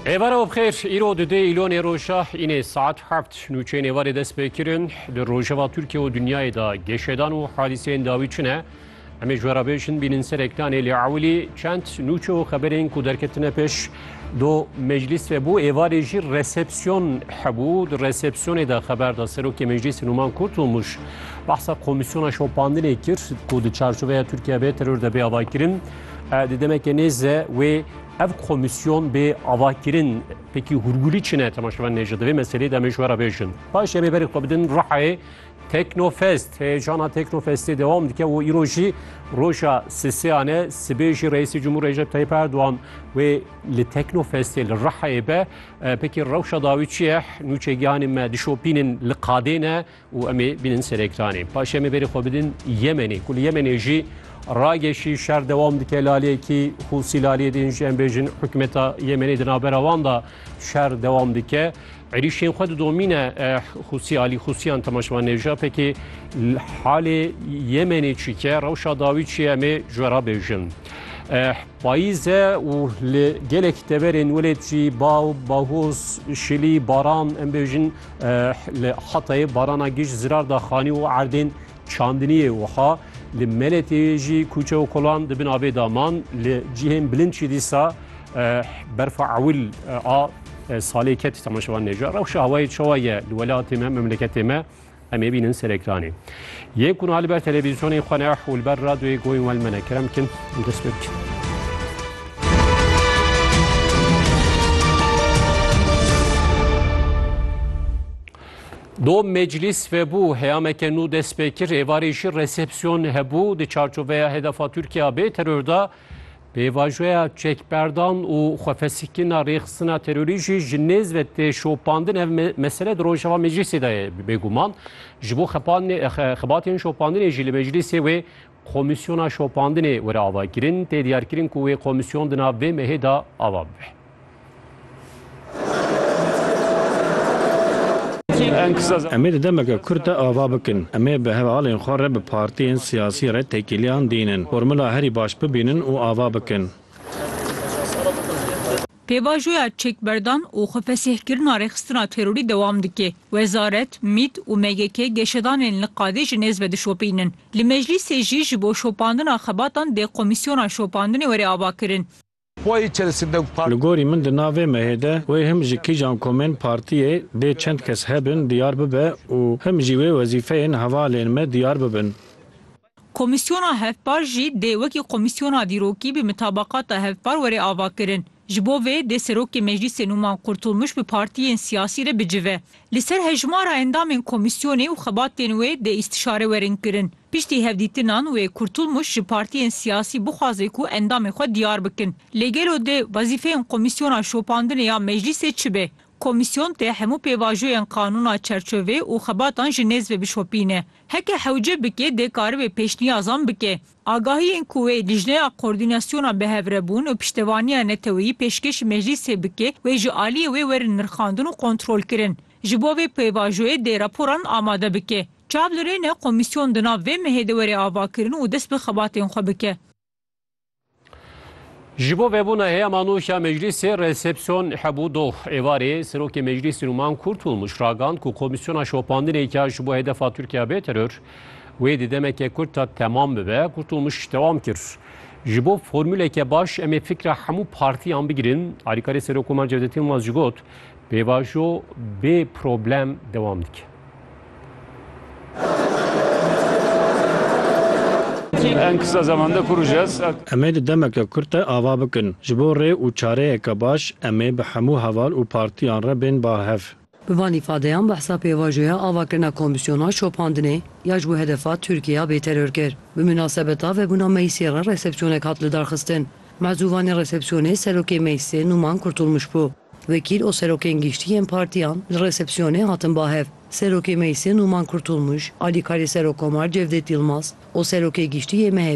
Êvara û bixêr îro di dê îlonê roja înê saet heft nûçeyên êvarê dest pê kirin di rojeva Tirkiye û dinyayê da geşedan û hadîseyên dawî çi ne em ê ji we re bêjin bînin serek danê lê ewilî çend nûçe û xeberên ku derketine pêş do meclîs ve bû êvarê jî resepsiyon hebû di resepsiyonê de xeber da serokê meclîsê Numan Kurtulmuş behsa komîsyona şopandinê kir ku di çarçoveya Tirkiye bê teror de bê avakirin Di demekê nêze wê ev komisyon bê avakirin pekî hûrgûlî çine temaşevan nêje divê meselê demê ji wera bêjin. Paşê bê berê xwe bidin Rihayê Teknofest heyecana Teknofestê devam dike û îro jî roja sisêyane sibê jî Reîsê Cumhur Recep Tayyip Erdoğan wê li Teknofestê li Rihayê be pekî rewşa dawî çi ye nûçegihanê me dişopînin li qadê ne û em ê bînin ser ekranê. Paşê em ê berê xwe bidin Yemenê ku li Yemenê jî rageşî şer dewam dike laliyekî Hûsî laliyê din jî em bêjin hikûmeta Yemenê di navbera wan da şer dewam dike. Êrîşên xwe didomîne Hûsî alî Hûsîyan temaşevan nêja pekê halê Yemenê çîke rewşa dawî çi em ê ji we re bêjin. Payîze û li gelekî deverên welêt jî baw, bahoz, şilî, baran em bêjin Li Hatayê barana giş zirar da xanî û erdên çandiniyê wiha li Meletê jî kûçe û kolan di bin avê da man li cihên bilind jî dîsa berfa ewil a salê ketî temaşevan nêja rewşa hawayê çawa ye li welatê me memleketê me em ê bînin serekranê. Yên ku niha li ber televîzyonên xwe ne û li ber radyoyê goyên we li me ne kerem bikin û dest pê bikin. Do meclîs vebû heyameke nû dest pê kir êvarê jî resepsiyon hebû di çarçoveya hedefa Tirkiya bê teror da Pêvajoya çekberdan û xwefesikirina rêxistina terorî jî ji nêz ve tê şopandin. Ev mesele di Rojava Meclîsê de ye bêguman. Ji bo xebatên şopandinê jî li meclîsê wê komîsyona şopandinê were avakirin. Tê diyarkirin ku wê komîsyon di nav vê mehê de ava bibe. Em ê di demeke kurt de ava bikin. Em ê bi hevalên xwe re bi partiyên siyasî re têkiliyan dînin, formula herî baş bibînin û ava bikin. Pêvajoya çekberdan û xwefesihkirina rêxistina terorî dewam dike. Wezaret, mît û MGK geşedanên li qadê ji nêz ve dişopînin. Li meclîsê jî ji bo şopandina xebatan dê komîsyona şopandinê were avakirin. Li gorî min di nav vê mehê de wê him ji kîjan komên partiyê dê çend kes hebin diyar bibe û him jî wê wezîfeyên hevalên me diyar bibin. Komîsyona hevpar jî dê wekî komîsyona dîrokî bi mitabaqata hevpar were avakirin. Ji bo vê dê Serokê Meclîsê Nûman Qurtulmuş bi partiyên siyasî re bicive. Li ser hejmara endamên komîsyonê û xebatên wê dê îstîşare werin kirin. Piştî hevdîtinan wê Kurtulmuş ji partiyên siyasî bixwaze ku endamên xwe diyar bikin. Lê gelo dê wezîfeyên komîsyona şopandinê ya meclîsê çi be? Komîsyon dê hemû pêvajoyên qanûna çerçovê û xebatan ji nêz ve bişopîne. Heke hewce bike dê karibe pêşniyazan bike. Agahiyên ku wê lijneya koordînasyona bihevrebûn û piştevaniya neteweyî pêşkêşî meclîsê bike wê ji aliyê wê werin nirxandin û kontrolkirin. Ji bo vê pêvajoyê dê raporan amade bike. Çav li rê ne komîsyon di nav vê mehê de were avakirin û dest bi xebatên xwe bike. Ji bo vebûna heyama nû ya meclîsê resepsiyon hebû doh. Êvarê Serokê Meclîsê Nûman Kurtulmuş ragand ku komîsyona şopandinê ya ji bo hedefa Tirkiya bê teror, Wê di demeke kurt de temam bibe, got û mij dewam kir. Ji bo formûleke baş em ê fikra hemû partiyan bigirin, alîkarê Serokomar Cevdet Yilmaz jî got, pêvajo bê problem dewam dike. En kısa zamanda kuracağız. Em ê di demeke kurt de ava bikin. Ji bo rê û çareyeke baş em ê bi hemû heval û partiyan re bên ba hev. Bi van îfadeyan behsa pêvajoya ava kirina komîsyona şopandinê ya ji bo hedefa Tirkiyeya bêteror kir. Bi minasebeta vebûna meclîsê re resepsiyonek hat lidarxistin. Mezûvanê resepsiyonê serokê meclîsê Nûman Kurtulmuş bû. Wekîl û serokên giştî yên partîyan li resepsiyonê hatin bahev. Serokê meclîsê Nûman Kurtulmuş, alîkarê Serokkomar Cevdet Yilmaz û serokê giştî yê